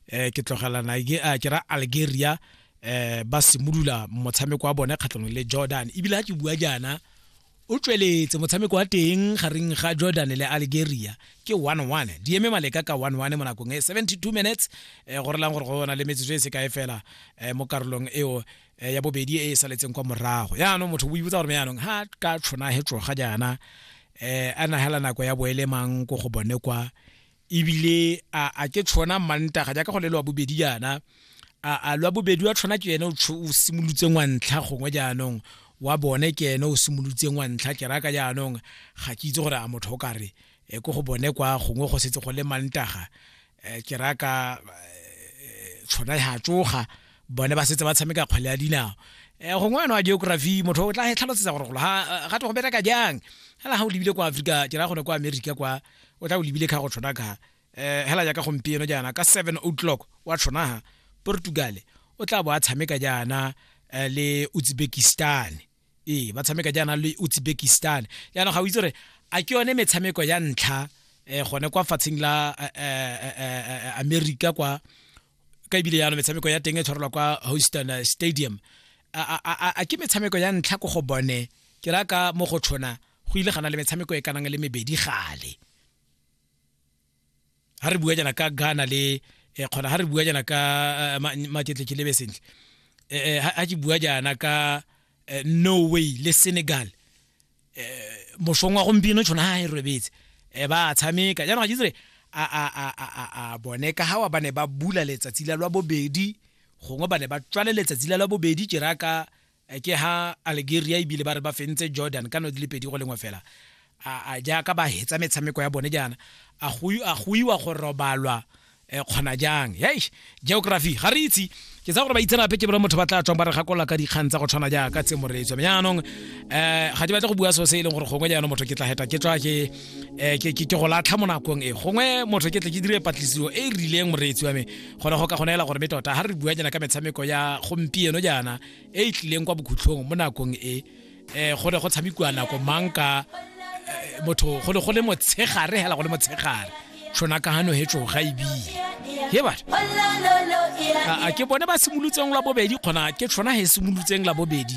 eh ke tlogela Nigeria ke ra Algeria eh ba simolola motshameko wa bone kgatlhanong le Jordan ebile ha ke bua jaana o tsweletse motshameko wa teng gareng ga Jordan le Algeria ke 1-1 di eme maleka ka 1-1 mo nakong e 72 minutes eh go relang gore go bona le metsotso e se kae fela eh mo karolong eo eh, ya bobedi e e saletseng kwa morago yaanong motho o ibotsa gore me yaanong ha ka tshwana he tsoga jaana eh a nagela nako ya boelemang ko go bone kwa ebile a a ke tshwana mantaga jaaka go le lwa bobedi jaana a a lwa bobedi wa tshwana ke ene o simolotseng wa ntlha gongwe jaanong wa bone ke ene o simolotseng wa ntlha ke raka jaanong ga ke itse gore a motho o ka re e ko go bone kwa gongwe go setse go le mantaga um ke raka eh, tshwana ya tsoga bone ba setse ba tshameka kgwele ya dinao um gongwe eno wa geography motho o tla tlhalosetsa gore golo ga to go bereka jang ga ga o lebile kwa afrika ke ra gone kwa america kwa o tla o lebile ka go tshwana ka eh hela jaaka gompieno jaana ka 7 o'clock wa tshwana Portugal o tla bo a tshameka jaana eh, le Uzbekistan ee ba tshameka jaana le Uzbekistan jaana ga o itse gore a ke yone metshameko ya ntlha eh gone kwa fatseng la eh, eh, eh, America kwa ka ebile yana metshameko ya teng e tshwarelwa kwa Houston eh, Stadium a ke metshameko ya ntlha ko go bone ke raka mo go tshwana go ile gana le metshameko e kanang le mebedi gale ha re bua jana ka Ghana le eh, kgona ha re bua jana ka eh, maketle ke lebe sentle eh, ha ke bua jana ka Norway le Senegal moshong wa gompieno tshwana ha e robetse ba tshameka jana ga jitsre a a a a a bone ka ha wa bane ba bula letsatsi la lwa bobedi gongwe bane ba tswale letsatsi la lwa bobedi jeraka ke ha algeria ebile ba re ba fentse jordan ka no di le pedi go lengwe fela a jaaka ba hetsa metshameko ya bone jaana a go iwa go robalwa e kgona jang yei geography ga re itse ke tsa gore ba itserape ke bone motho ba tla tswang ba re gakola ka dikgang tsa go tshwana jaaka tse moreetso mme jaanong um ga ke batle go bua so se e leng gore gongwe jaanong motho ke tla heta ke tswa ke eh, ke go latlha mo nakong e gongwe motho ke tle ke dire patlisiso e e rileng moreetsi wa me gone go ka go neela gore me tota ga re bua jana ka metshameko ya gompieno jaana e e tlileng kwa bokhutlhong mo nakong e um go ne go tshamekiwa nako mang ka eh, motho go ne go le motshegare hela go le motshegare tshona ka gano hetso ga ebile he batho a ke bone ba simolotseng la bobedi kgona ke tshona he simolotseng la bobedi